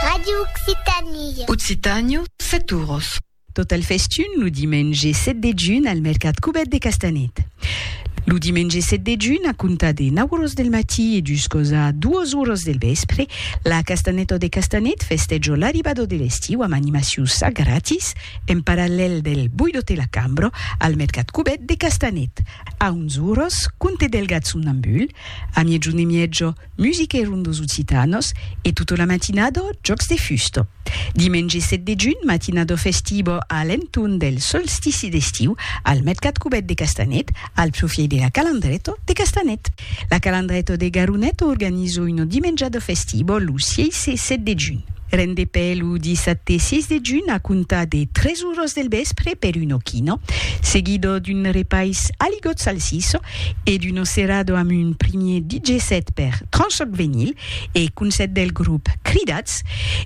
Radio Occitanie. Occitània, Saturos. Tot el festun lo dimenge 7 de junh al mercat Cubet de Castanet. Lo dimenge 7 de junh, a comptar de 9 oras del matí e juscausa 2 oras del vèspre, la Castaneta de Castanet festèjo l'arribada de l'estiu amb animaciu ça gratis en parallèl del Boidote la Cambra al mercat Cubet de Castanet. A 11 oras, Conte del Gat Somnambul, a miègjun e mièja, Musica e rondos occitanos e tota la matinada jòcs de fusta. Dimenge 7 de junh, matinada festiva a l'entorn del solstici d'estiu al mercat cubèt de Castanet, al profièit de la Calandreta de Castanet. La Calandreta de Garoneta organiza una dimenjada festiva lo 6 e 7 de junh. Rendepè lo dissabte 6 de junh a comptar de 3 oras del vèspre per una quina, seguida d'un repais a ligotz salsissa, e d'Uno Cerrado amb un primier DJ set per Tranchoc Venyl e Concèrt del grop Cridats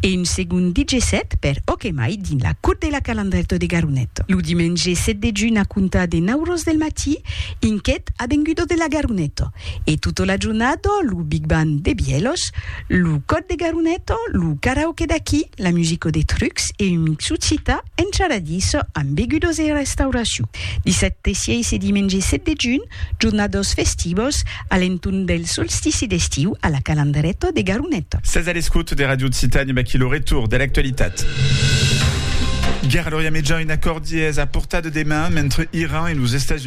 e un segond DJ set per Ok Mai dins la Cour de la Calandrèto de Garonet lo dimenge 7 de junh a comptar de 9 ros del matí inquet Avengudo de la Garoneto e tota la jornada lo Big Band de Bièlhos Lo còd de Garuneto, lo karaoke d'aquí, la musico de Trucs e un mixu cita encharadís amb begudos e restauracion. Dissabte 6 e dimenge 7 de junh, jornados festivos a l'entorn del solstici d'estiu a la Calandreto de Garuneto. Sètz a l'escòut de Radio Occitània amb aquí lo retorn de l'actualitat. Guèrra a l'Orient Mejan, un acòrdi es a portar de deman mentre Iran e los Estats Units.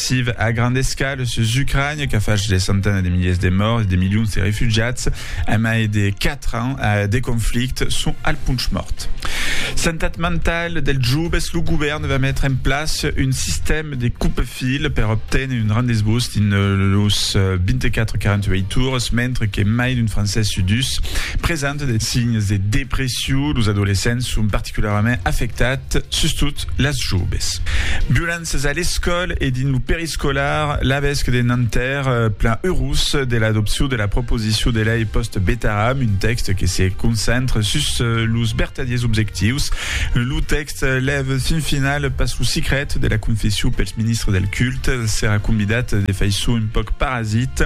Siv a grand escala sus Ucrania qu'a fach de centena de miliers de mòrts e de milions de refugiats a mai de 4 ans de conflicte son al ponch mòrt. Santat mentala dels joves, lo govèrn va metre en plaça un sistèma de coupe-fil per obténer un rendez-vous dins los 24-48 ores mentre que mai d'un francés sud 2 presenta de signes de depression. Los adolescents son particularament particularament afectat, sustot las joves. Violenças a l'escòl e dins lo periscolar, l'avesc de Nanterre plan eurós de l'adopcion de la proposicion de lei post-Betaram, un tèxt que se concentre sus los vertadiers objectius. Lo tèxt lèv fin final pas lo sicret de la confession pels ministres del culte, serà convidat de faiçon un pauc parasit.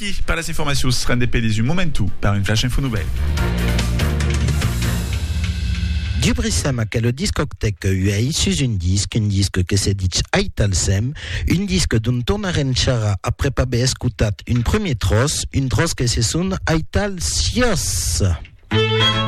Qui per las informacions rende pedis un momentu per un flash info novèl. Dubrissem aquela discoctèca uèi sus un disc, un disc que se ditz Aital Sem, un disc d'ont tornarem charrar aprèp aver escotat un premier tròç, un tròç que se sona Aital Siòs.